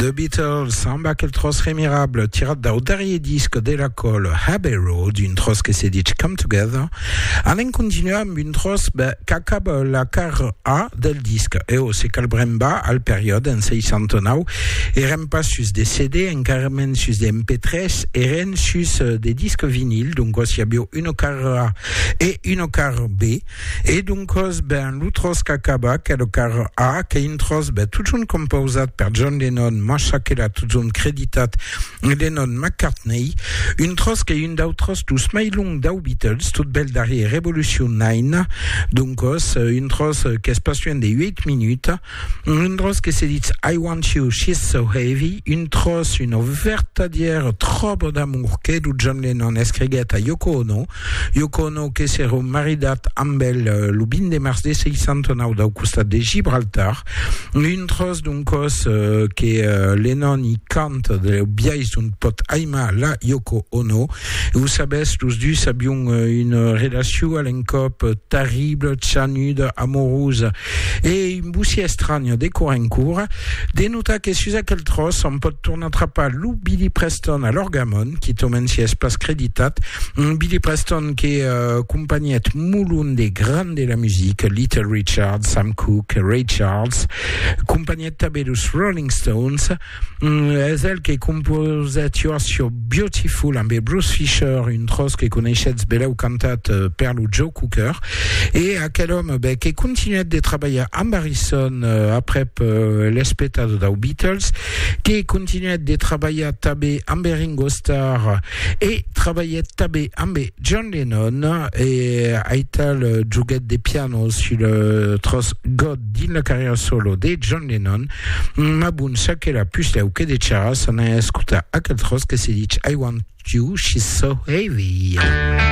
The Beatles amb aquel tros remirable tirat dau darrier disc de la col Abbey Road, un tros que se dit Come Together. Anem continuar amb un tros qu'acaba la car A del disc. E o se calbrem ba al periòde en 69, eren pas sus de CD, encara mens sus de MP3, eren sus de disc vinil, donc si avieu una car A e una car B, E doncos, ben, lo tròç qu'acaba, qu'es lo quart A, qu'es un tròç, ben, totjorn compausat per John Lennon, mas çò que l'a totjorn creditat Lennon-McCartney, un tròç qu'es un dau tròç dus mai long dau Beatles, tot bèl darrier Revolution Nine, doncos, un tròç qu'es pas luènh de ueit minuts. Un dròç que se ditz I want you, she's so heavy, un tròç, una vertadièra tròba d'amor que lo John Lennon escriguèt a Yoko Ono, Yoko Ono que s'èra maridat amb el lo 20 de març de 69 dau costat de Gibraltar, un tròç d'un còs que Lennon i canta deu biais d'ont pòt aimar la Yoko Ono. E o sabètz, los dus avián una relacion a l'encòp terribla, chanuda, amorosa, E vos i estranha, de cor en cor, de notar que sus aquel tròç òm pòt tornar trapar lo Billy Preston a l'orgamon, quitament si es pas creditat, un Billy Preston que acompanhèt molon de grands de la musica, Little Richard, Sam Cooke, Ray Charles, acompanhèt tanben los Rolling Stones, Mm, es el que composèt You're So Beautiful amb Bruce Fisher, un tros que coneishetz belèu cantat eh, per lo Joe Cooker. E aquel òme beh, que continuèt de trabalhar amb Harrison eh, aprèp eh, l'espetado dau Beatles, que continuèt de trabalhar tabé amb Ringo Starr e trabalhèt tabé amb John Lennon e aital joguèt de piano sul tros God Dins la carrièra solo de John Lennon, ma bon, ça que la pus deu que de charras, anai escotar aquel tròç que se dich I want you, she's so heavy.